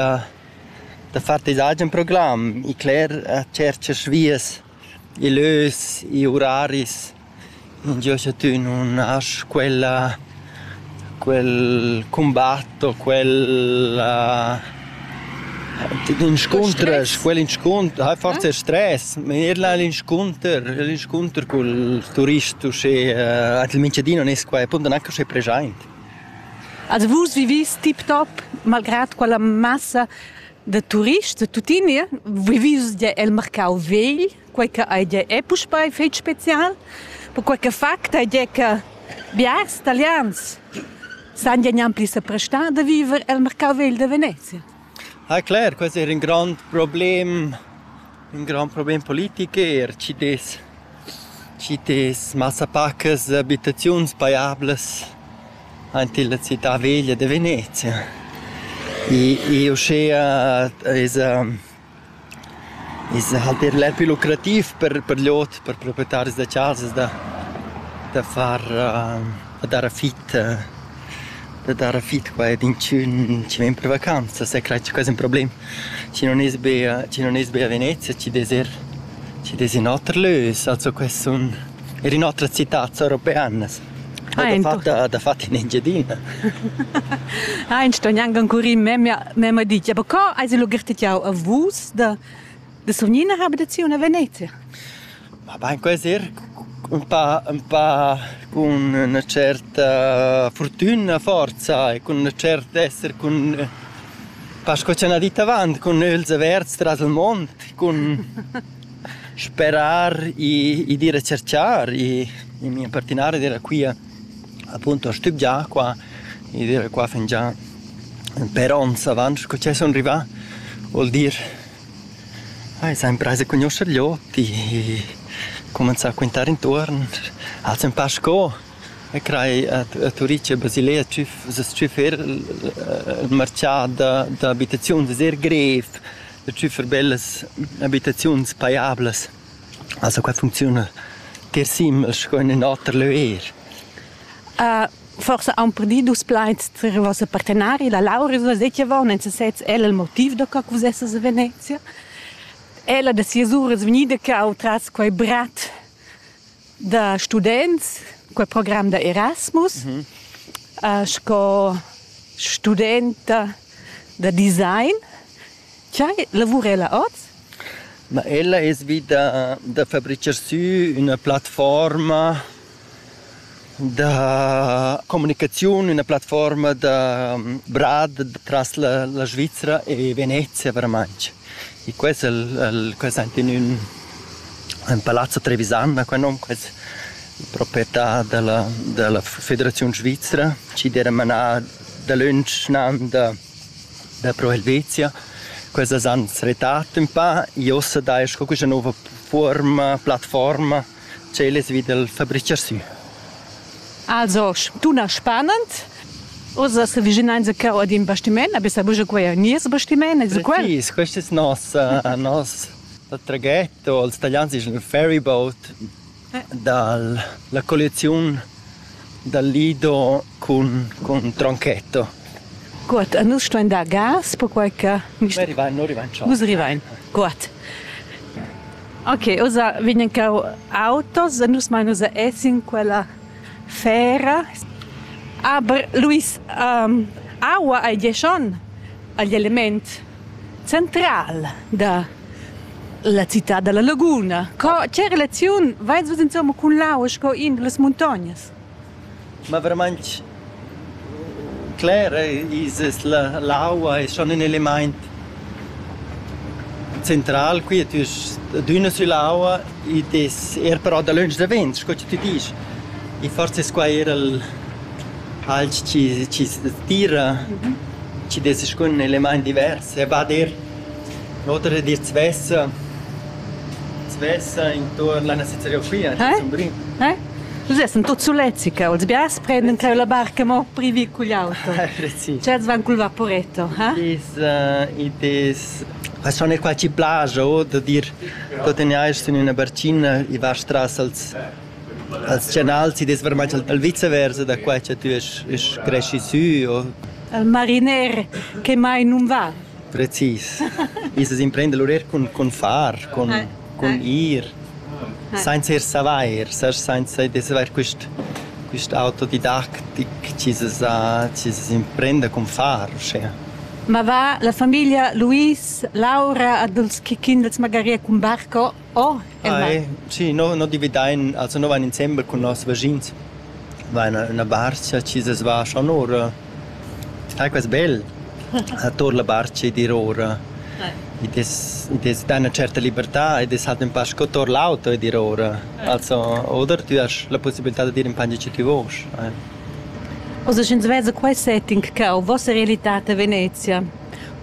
Da far tes agen program, i cler a tscherchas vias, i lös, i uraris. Ingio cha tü nun hast quella quel cumbat o quella inscuntras, quel inscuntr, hai forsa stres, ma eir là l'inscunter, l'inscunter cul turist uschè, al Minchadin non es quai appunto neanche uschè preschaint. Also vus vivis tip-top, malgrad quella massa da turists da tuttina, vivis gia el marcau vegl, quei che ei gia è puspei fetg special, perquei che fact ei gia che biars italians san gia gnanc pli seprestar da viver el marcau vegl da Venezia. Ah clar, quest eir ün grand problem, ün grand problem politic eir, chi dess chi dess massa pacas abitaziuns paiablas aint illa città veglia da Venezia. I uschea esa I's halt eir bler pü lucrativ per per l'ot, per proprietaris da chasas da da far da dar affit da dar affit qua ed inchün chi ven per vacanzas, sai crai che quai ais ün problem. Schi non es be schi non es be a Venezia, schi dess eir schi dess in oter lös, also quai sun eir in otras citats europeanas. dafatta dafatta in Engiadina. Ha in sto gnanc ancora memia memma dit, ja aber co hai sie lugirtet jau a vus da da Sovnina habitaziun a Venezia? Ma bain quasi er un pa un pa con una certa fortuna forza e con una certa esser con pas co c'è una ditta avant con els averts tras il mond con Sperar i ed ir a cerchar, i mia partinara d'ira quia appunto a stübgiar qua, i d'ira qua fingià per ons avant scu che sun rivà, vuol dir ai s'ha imprais a cugnuoscher gli ot, i cumanzà a quintare intuorn, ha'ls ün pa sco e crai a Turitg e Basilea s-chüf ir marchà d'abitaziuns, es eir grev. da tschüffer bellas abitaziuns pajablas. Also qua funcziuna tier simel sco in in oter leu eir. Uh, forse han perdì dus plaids tra i vossa partenari, la Lauris la deceva, non se sez el il motiv da как vos essas a Venezia. Ella da sias uras vgnida ca ho tras quei brat da students, quel program da Erasmus, mm -hmm. uh, sco studenta da design. Chai lavura ella oz? Ma ella es vita da fabricar sü una plattforma da comunicaziun, una plattforma da brad tras la, la Svizzera e Venezia veramente. E quels el, el quels ein in ün, ün palazzo trevisan ha quei nom, quels proprietà dalla dalla Federaziun svizra, chi d'eira manà dalöntsch nan da da Pro Helvetia. Quels as han retrat ün pa e uossa dai sco quista nouva fuorma, plattforma tschel es vi dal fabricher sü. Also, dunna spanend, Oz as avvicinains a cheu ad ün bastimaint, na bessa buca quei ein nies bastimaint, es quel? Precis, quest es nos, uh, nos da traghetto, ils italians dischan il ferry boat, dal la colliaziun dal lido cun, cun tronchetto. Guot, e nus stuain dar gas, perquai che... Nus rivain, nus rivain già. Nus rivain, guot. Ok, ossa vegnan cau autos e nus mai nus essin quella fera. Aber Luis, um, aua ei diesch on agl element. Central da la citad da la laguna. Co che relaziun vais vus insomma cun l'aua sco in da las muntognas? Ma verament cler es la, l'aua è schon ün elimaint central qui tü d'üna süll'aua id es eir però dalöntsch davent sco cha tü disch e forsa es quai eir il alch chi chi tira chi'd es scun elemaint divers e va dir l'oter di svessa svessa intuorn la nossa geografia Sumdrin. Nus essan tuot sulets qua, els biars prendan creu la barca mo privì cugl auto. Precis. Tschels van cul vaporetto, ha? It is it is schon è qualche plage o da dir tuot in eis sün üna barcina i va tras als Als chanals ti dess varmai dal viceversa da quai cha tü esch esch creschi sü o? Il mariner che mai nun va. Precis. Ins as imprenda lur eir cun, cun far, cun, cun ir, sainza ir savair, sast, sainza d'esser quist quist autodidactic chi s'es chi s'es imprenda cun far uschea. Ma va la famiglia Luis, Laura, Adolf Chichin, els magari cun barco? Oh, Ai, sì, no, no dividain, also no vain insembel cun noss vaschins. Vain üna barcha chi s'es vascha onura. Sai quas bel? Ator la barcha ed ir ora. Id es, id es da üna certa libertà ed es halt ün pa sco tor l'auto ed ir ora. Also, oder tü hast la pussibilità dad ir in pange chi tü vosch. Ai. Also, sch'ins veza quai setting che ho vossa realità a Venezia,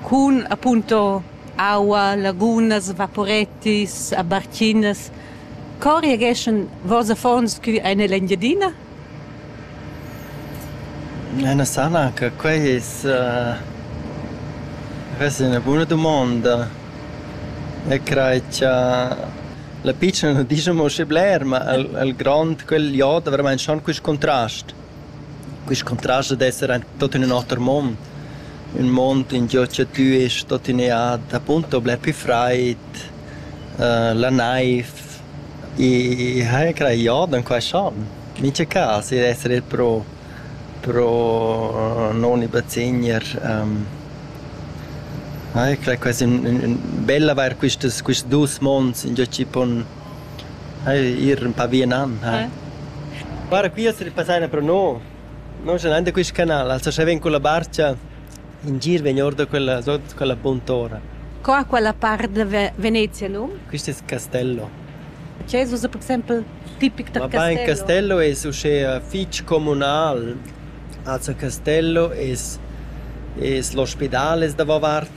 cun appunto aua, lagunas, vaporettis, barchinas. Co reageschan vos affons cu ein ell'Engiadina? Ena sana che quei es uh, ves ina buna dumonda. E crei cha la pitschna nu discha mo schi bler, ma il il grond, quel jod, veramein schon quist contrast. Quist contrast dad esser aint tuot in ün oter mond, ün mond in giò cha tü est tuttenea appunto bler pü fraid, la naiv, i haja crajà da ün qualche an, mincha cas, i esser il pro pro non i bazegner haja crà quasi ün ün bel avair quistas quist dus monds ingiò chi pon Ir ün pa via nan, ha. Guarda qui as ripassai pro no. No scha nan da quist canal, also scha ven culla barcha, in gir vegn or da quella, sot quella buntora. Co ha quella part da Venezia num? Quist es Castello. Ce es per exempel tipic da Castello? Ma pa in Castello es uschè fich comunal. Also Castello es es l'ospidal es davo vart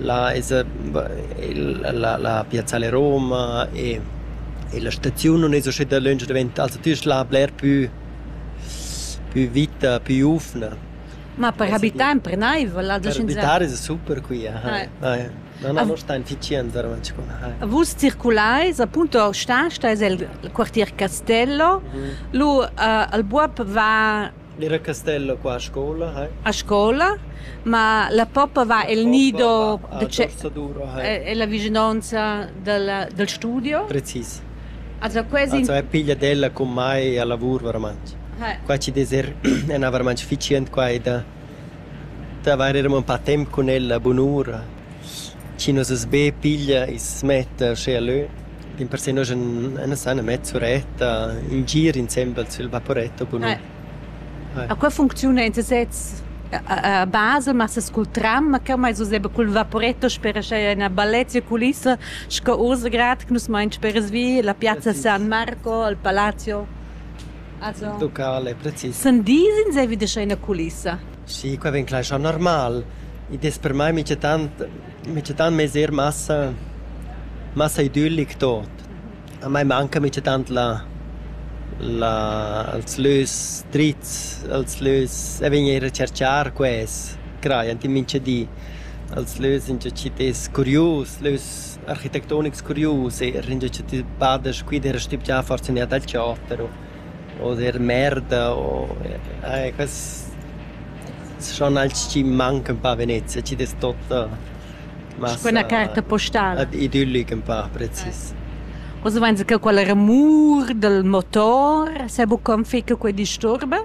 Là esa la la piazza alle Roma e e la staziun nun es uscida lönch davent, also tü hast là bler pü pü vita, pü ufna. Ma per habitar empernaivel ad Per habitar esa super qui, aha. Ah ja. No no, no stain ficient davanti qua, aha. Vus circulais, appunto Stasta es il quartier Castello, lu al buob va Era Castella qua a scola, hai? A scola? Ma la poppa va el nido da tge è la vischinanza dal studio? Precis. Also quasi Also è pigliat ella cun mai a lavur veramente. Qua ci dess er ena veramente efficient qua e da da avair er un pa temp cun ella bunura. Schi nos es be piglia e smetta uschè a lö. Dimpersè nus en san metter suretta in gir insembel sül vaporetto bunun. A qua funcziuna in sesez a basa, massa cul tram, ma cheu meis usè be cul vaporetto spera cha ün balletta sü culissa sco uss grad che nus main speras vi, la piazza San Marco, il palazzo. Also Il locale precis. Sun dis insaivi da scher in culissa? Sì, qua vegn clar schau normal. Id es per mai minchatant Minegiatant m'ais eir massa massa idüllic tuot. A mai manca minegiatant la la els lös drits, els lös e vegn eir a cerchar quels, crajan tin mincha di. Els lös ingio chi t'es curius, lös architettonics curius eir, ingio cha ti bada scu id era stübgià forsa üna dal chater o o der merda o eh quels schon als chi mancan pa a Venezia, chi dess totta massa... Quella carta postala. Idyllic ün pa precis. Oz vainsa che quella remur dal motor s'ha buca ün fich che quei disturba?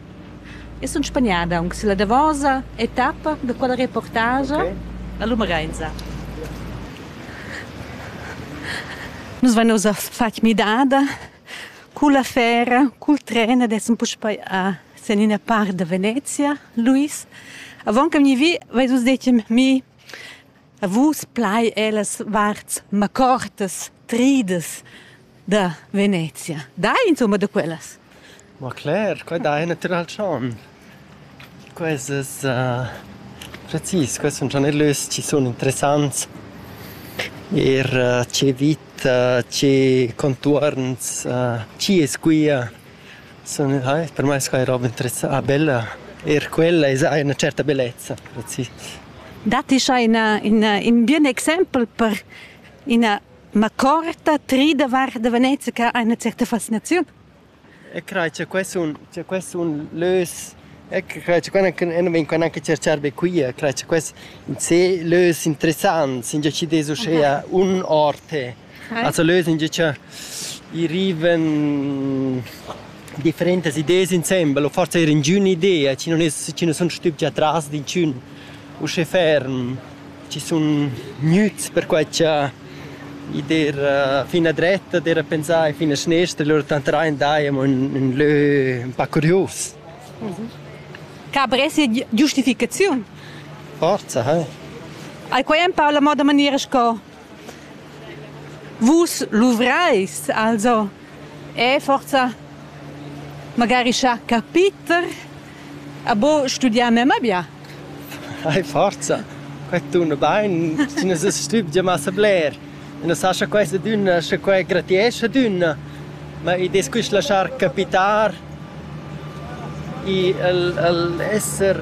Eu sun spagnada aunc sülla davosa etappa da quella reportagia. La lumareisa. Nus vain ussa fat midada cul affera, cul tren ed essan puspei a sen ina part da Venezia, Luis. Avon che vegni vi, veis vus detg mi A vus plai ellas varts macortas, tridas da Venezia. Dai insomma da quellas. Ma Claire, quai dai natural chan. Quesas uh, precis, quels sun già nellös ci sun interessants. Er uh, ce vita, ce contuorns, uh, ci es quia. Sun eir per mai sco roba interessanta, bella. Eir quella esa ha üna certa bellezza, precis. Datti scha ina ina in bien exempel per ina macorta tri davart da Venezia che ha üna certa fascinaziun? E crai cha quai sun cha quai sun lös. E crai cha quai nu vegn quai gnanca tscherchar be quia. Crai cha quai sun ses lös interessants, ingià chi'd es uschea un or d'te. Also lösen gia cha i rivan differentas ideas insembel o forsa eir ingün idea chi non es chi nu sun stübgi atras d'inchün uschè ferm, chi sun gnüts perquai cha i d'eira fin a dretta d'eira pensà e fin a schnestra, lur tanteraint daja amo ün ün lö ün pa curius. Ca bress sia giustificaziun? Forza, eh! Ai quai am parla mo da maniera sco Vus luvreis also? E forsa magari schar capiter a bo studiar memma bia? Ei forsa. Quei tuna bein, tina se stübgia massa bler. E non sa scha questa dunna, scha quei gratiescha dunna. Ma id es quist laschar capitar i el el esser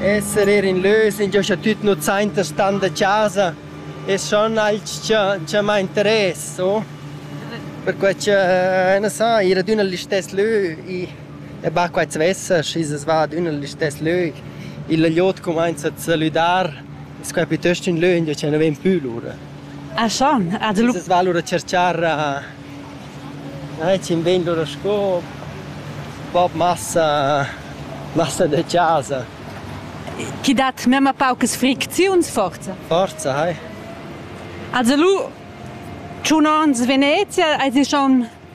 esser eir in lös ingio cha tüt nu sainta stan da chasa es schon alch cha cha m'ha interess, o? Perquai cha na sa, ir ad üna listess lö i e ba quai s'vessa, schi as va ad üna listess lö, il lögliot cumainza a salüdar, es quai piuttost ün lö ingio cha nu ven pü lura. Ed els van lura a tscherchar tschient ben lura sco bab massa massa da chasa. Chi dat memma paucas fricziuns forza? Forza, hai. Also lu tschun onns Venezia, eis ti schon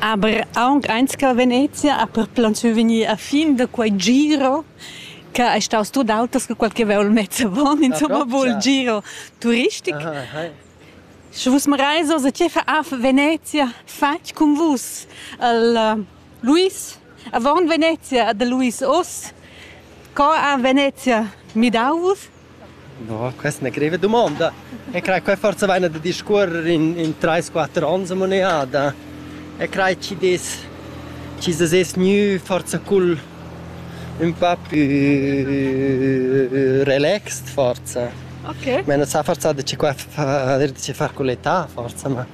Aber aunc eins che Venezia ha perplantschiu vegnir a fin da quei giro che ei staus tut auters che quel che vev'el mez avon, insomma, vul giro turistic. Sche vus mareis oz, tgei fa ha Venezia fatg cun vus? El Luis, avon Venezia, da Luis oz. Co ha Venezia midau vus? No, questa è una greve domanda. E crai, qua forse vaina da discorrer in, in 3-4 ans a moneda. E crai, ci des, ci des es gnü forse cul un po' più relaxed forse. Ok. Ma non sa forse da ci qua fa, da ci far con l'età forse, ma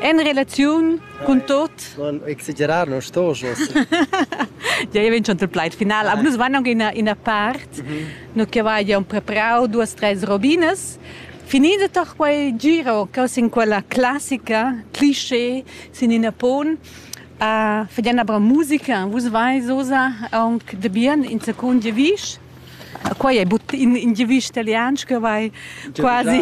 En relaziun cun tot. Non exagerar, non sto jos. Ja, io vincio il plaid final. Aber nus vanno in una parte, no che va un preparau duas tres robinas. Finito toch quel giro che in quella classica cliché sin in pon a fedena bra musica, vus vai sosa aunc de bien in seconde visch. quai è but in, in giavisch italian che vai quasi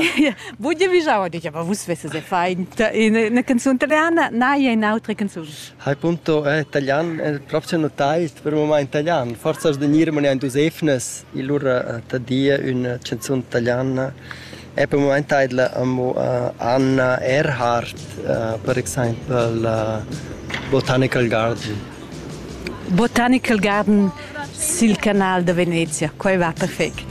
vu giavischau dice ma vus vesses faint una canzone italiana na è un'altra canzone hai punto eh, italian è proprio notaist per moment italian forza da nirmane und Josefnes il lur eh, tadia una canzone italiana E per mument taidla amo Anna Erhardt, per exaimpel Botanical Garden. Botanical Garden sil canal da Venezia, quai va perfect.